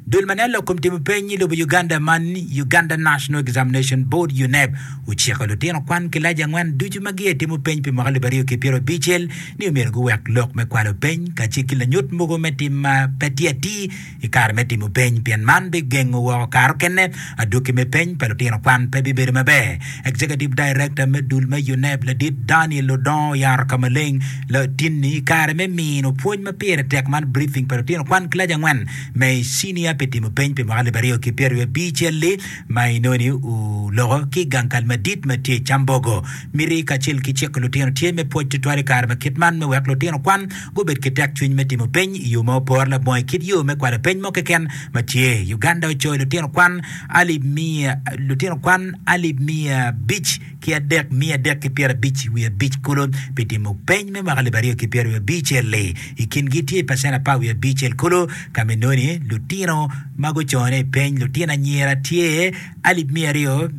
Dul ma nen lok kom timo peny i lobo Uganda man, Uganda National Examination Board, UNEB, ociko lutino kwan kilaci angwen ducu ma giye timo peny pi mwaka alip aryo ki pyero abicel ni omyero guwek lok me kwalo peny kacel ki lanyut mogo me tim ma pe tye atir i kare me timo peny pien man bigengo woko kare okene Adwoki me Peny pa Lutino Kwan pe Bibedo Maber, Executive Director me dul me UNEB Ladit Daniel Odongo oyaro ka maleng latinni i kare me mino pwony ma pire tek man briefing pa lutino kwan kilac angwen me i cinia pi timo peny pi mwaka alip aryo ki pyeraryo abicelli ma inoni oloko ki gang kal madit ma tye i Cambogo. Miti kacel ki ciko lutino tye me pwoc tutwal i kare ma kit man me wek lutino kwan Gubed ki tekcwiny me timo peny i yo ma opore labongo i kit yo me kwalo peny mo keken ma tye. Uganda ocoyo lutino kwan alip miya lutino kwan alip miya abic ki adek miya adek ki pyerabic wiye abic kulu pi timo peny me mwaka alip aryo ki pyeraryo abicel-li. I kingi tye pacen apar wiye abicel kulu ka me noni lutino ma gucone i peny lutino anyira tye alip miya aryo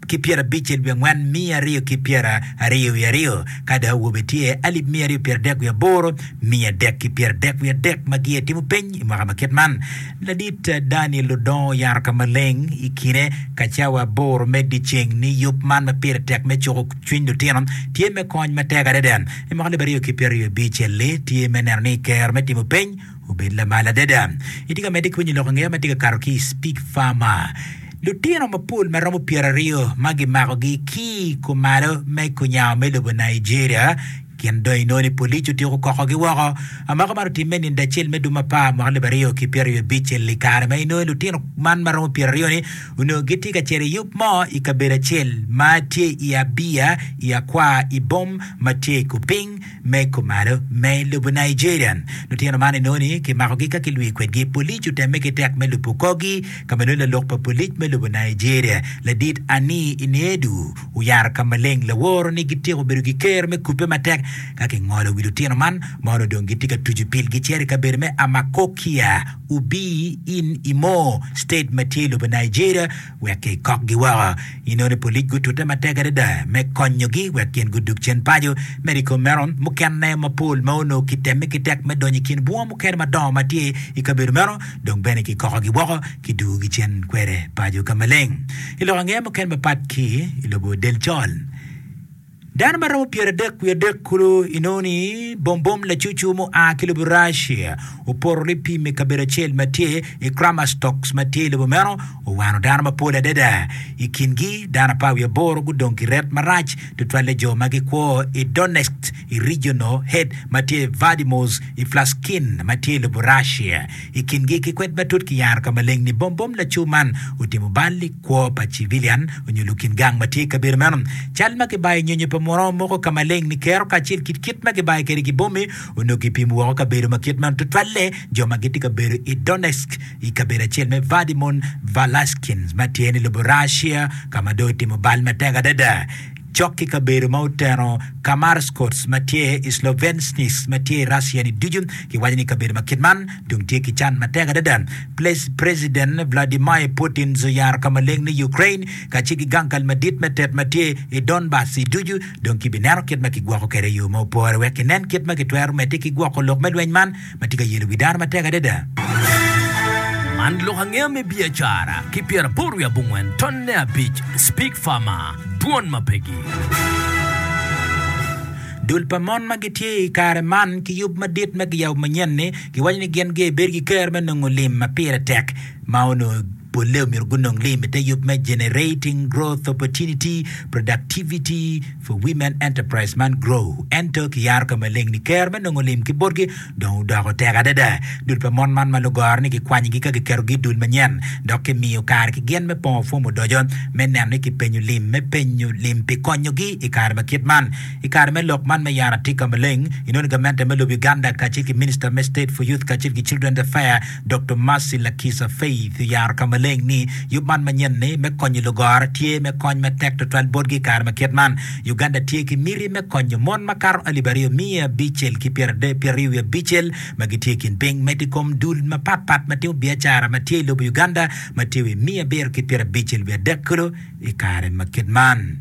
ki pyera abicel wiye angwen miya aryo ki pyera aryo wiye aryo, ka dok awobe tye alip miya aryo pyera dek wiye aboro miya dek ki pyera dek wiye adek ma giye timo peny i mwaka ma kit man. Ladit Daniel odongo oyaro ka maleng i kine ka cawa aboro me dyeceng ni yub man ma pire tek me cuko cwiny lutino tye me kony matek adada. I mwaka alip aryo ki pyera aryo abicel-li tye me neno ni kero me timo peny Obed lamal adada! Itye ka medde ki winyo lok angeya ma tye ka kato ki i Speak Farmer. Lutino mapol ma romo pyeraryo ma gimakogi ki i kumalo me kunyango me lobo Nigeria gin dong inongo ni polic otyeko okokogi woko. Amako man otimme ninde acel me dwe me apar mwaka alib aryo ki pyeraryo abic i kare ma inongo ni lutino man ma romo pyeraryoni onongo gitye ka cito i yub mo i kabedo acel ma tye i Abia i Akwa Ibom ma tye i Kuping Me kumalo, me i lobo Nigeria, lutino man inongo ni kimakogi ka kilwi kwedgi. Polic otemme ki tek me lubo korgi, ka ma nongo lalok pa polic me lobo Nigeria, ladit Anii Inedu, oyaro ka maleng laworo ni gityeko bedo gi kero me kubbe matek ka kingolo wi lutino man ma onongo dong gitye ka tucu pil gicer i kabedo me Amakokia, Ubii in Imo state ma tye i lobo Nigeria. wek kikokgi woko. Inongo ni polic gutute matek adada me konyogi wek gin gudug cen paco. Medo i kom meno, mukene mapol ma onongo kitemme ki tek me donyo i kin bunga mukene madongo ma tye i kabedo meno dong bene kikokogi woko, kidugogi cen kwede paco ka maleng. I lokangeya mukene mapat ki i lobo del col, Dano ma romo pyeradek wiye adek kulu i nongo ni bombom lacucu mu a ki lobo Russia opoto lipim i kabedo acel ma tye i Kramastox ma tye i lobo meno owano dano mapol adada. I kin gi dano apar wiye aboro gudong ki ret marac tutwalle jo ma gi kwo i Donetsk i regional head ma tye Vadimos i Flaskin ma tye i lobo Russia. I kin gi ki kwed matut ki yaro ka maleng ni bombom lacu man otimo bal i Kwo pa civilian onyo lukin gang ma tye i kabedo meno, cal ma kibayo nyonyo pa muno moko ka maleng ni kero kacel ki kit ma kibayo kede ki bomi onongo kipimo woko kabedo ma kit meno tutwalle jo ma gitye ka bedo i Donetsk i kabedo acel me Vadimon Valaskins ma tye ni lobo Russia ka ma dong otimo bal matek adada cok ki kabedo ma oteno Kamarskots ma tye i Slovenskis ma tye i Russia-ni ducu. Kiwaco ni kabedo ma kit man dong tye ki can matek adada. Preciden Vladimir Putin oyaro ka maleng ni Ukraine kacel ki gang kal madit me tet ma tye i Donbas-si ducu dong kibineno kit ma kigwoko kwede i yo ma opore wek kinen kit ma kitwero medde ki gwoko lok me lweny man. ma tye ka yelo wi dano matek adada. Man lok angeya me biacara ki pyeraboro wiye abongwen tonne abic Speak Farmer, Dwon ma Pegi. Dul pa mon ma gitye i kare man ki yub madit ma kiyabo manyen-ni giwaco ni gin gibed ki ker me nongo lim ma pire tek ma onongo Polle omyero gunong lim i te yub me Generating Growth Opportunity, Productivity for Women Enterprise man Grow. Ento ki yaro ka maleng ni ker me nongo lim ki botgi dong odoko tek adada. Dul pa mon man ma lugoro ni kikwanyigi ka giketogi i dul manyen dok kimiyo kare ki gin me pongo fom odoco me neno ni kipenyo lim me penyo lim pi konyogi i kare ma kit man. I kare me lok man me yaro atika maleng, inoni gamente me lobo Uganda kacel ki Minister me State for Youth kacel ki Children's Affair, Doktor Mercy Lakisa Faith oyaro ka maleng ni yub man manyen-ni me konyo lugora tye me kony matek tutwal botgi i kare ma kit man. Uganda tye ki miti me konyo mon makato alip aryo miya abicel ki pyeraryo wiye abicel ma gitye i kin piny medo i kom dul mapatpat ma timo biacara ma tye i lobo Uganda ma tye wiye miya abiro ki pyerabicel wiye adek kulu i kare ma kit man.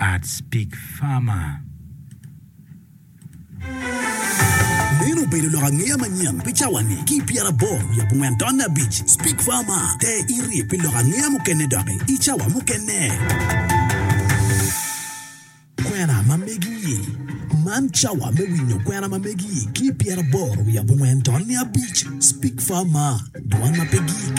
Arts Pig Farmer. Meno obedo lok angeya manyen pi cawa-ni. Ki i pyeraboro wiye abongwen tonne abic, Spig Farmer te irye pi lok angeya mukene doki i cawa mukene. Kwena ma megi-i, Man cawa me winyo kwena ma megi-i ki i pyeraboro wiye abongwen tonne abic, Spig Farmer, Dwan ma pe gik.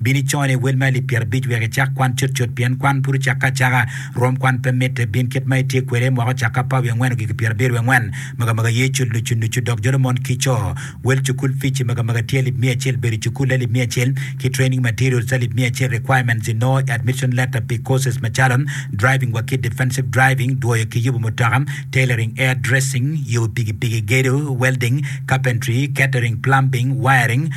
Bin icone i wel ma alip pyerabic wek icak kwan cutcut, pien kwan pud ocakke acaka. Rwom kwan pe mitte. Bin kit ma itye kwede i mwaka ocakke apar wiye angwen ogiki pyerabiro wiye angwen, magamaga ye cul nucu nucu, dok jolo mon ki co. Wel cukul fic i magamaga tye alip miya acel, bedo i cukul alip miya acel, ki training materials alip miya acel, requirements i nongo i admission letter pi courses macalo, driving wa ki defensive driving, dwoyo ki yubu mutoka, tailoring, air dressing, yubu pigipigi, gedo, welding, carpentry, catering, plumbing, wiring,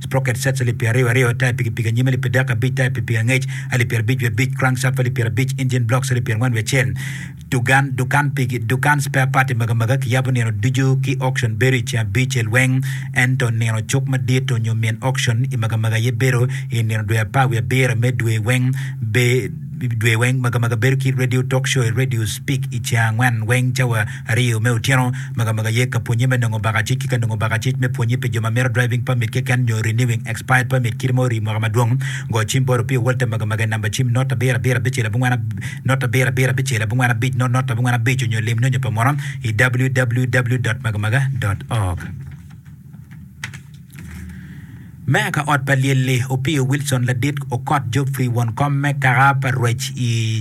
sprocket sets alip pyera aryo aryo, taya pikipiki anyim alip adek abic, taya pikipiki angec alip pyera abic wiye abic, crankshaft alip pyera abic, engine blocks alip pyera angwen wiye acel. Dugan, dukan piki, dukan spare part i maga maga kiyabo nino ducu ki auction bedo i ceng abicel weng, ento nino cuk madit onyo min auction i maga maga aye bedo i nino dwe apar wiye abiro me dwe weng, be, dwe weng, maga maga bedo ki radio talk show i radio speak i ceng angwen weng cawa Aryo me otyeno, Magamaga aye ka pwonye me nongo baka cik ki ka nongo baka cik me pwonye pi jo ma mito driving permit keken nyo renewing expired permit kit ma orii mwaka madwong. Go cim bot Opio Walter Magamaga i namba cim not abiro abiro abicel abongwen not abiro abiro abicel abongwen abic not not abongwen abic onyo lim nyonyo pa munu i www. Magamaga. Org. Meya ka ot pa lyel-li, Opiyo Wilson Ladit okot Geoffrey won kom me kaka pa rwec i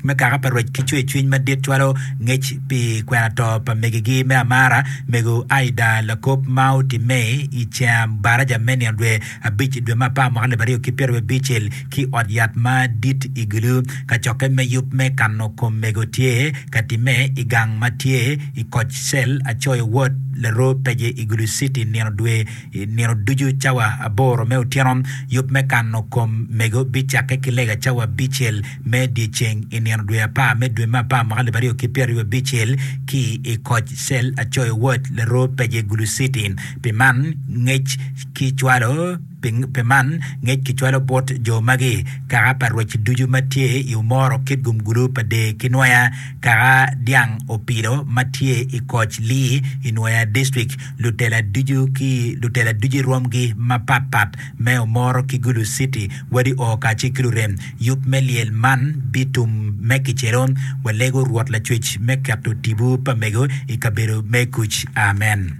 me kaka pa rwec ki cwer cwiny madit cwalo ngec pi kwena to pa megigi me amara mego Aida Lakop ma otimme i Cem Baraja me nino dwe abic dwe me apar mwaka alip aryo ki pyerabicel ki ot yat ma dit i Gulu, kacokke me yub me kano kom mego tye ka timme i gang ma tye i koc cel acoyo wod larwo pece i Gulu City nino dwe nino ducu cawa aboro me otyeno. Yub me kano kom mego bicakke ki lega cawa abicel me dyeceng i nino dwe apar me dwe me apar mwaka alip aryo ki pyeraryo abicel ki i koc cel acoyo wod larwo pece Gulu City. Pi man, ngec ki cwalo. Pi man, ngec kicwalo bot jo magi, Kaka pa rwec ducu ma tye i omoro kit gumgulu pa dee ki nwoya, kaka dyang opilo ma tye i koc lii i nwoya distrik, lutela ducu ki lutela ducu i rwomgi mapat pat me omoro ki gulu citi, wadi oo kacel ki lurem. Yub me lyel man bitum me kicelo. Walego Rwot Lacwec me keto tipo pa mego i kabedo me kuc. Amen.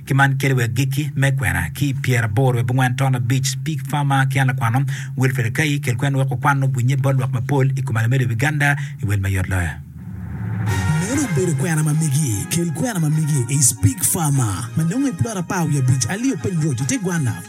ki man kede wa agikki me kwena ki i pyera aboro wiye bongwen ton abic, Speak Farmer ki an lakwano Wilfred Akai, kel kwen wek wakwan nongo winye bot lwak mapol i kom Alamedo Biganda i wel mayot loyo. Meno obedo kwena ma megi, kel kwena ma megi i Speak Farmer ma nongo i plot apar wiye abic, Alio Piny Road i te gwanna.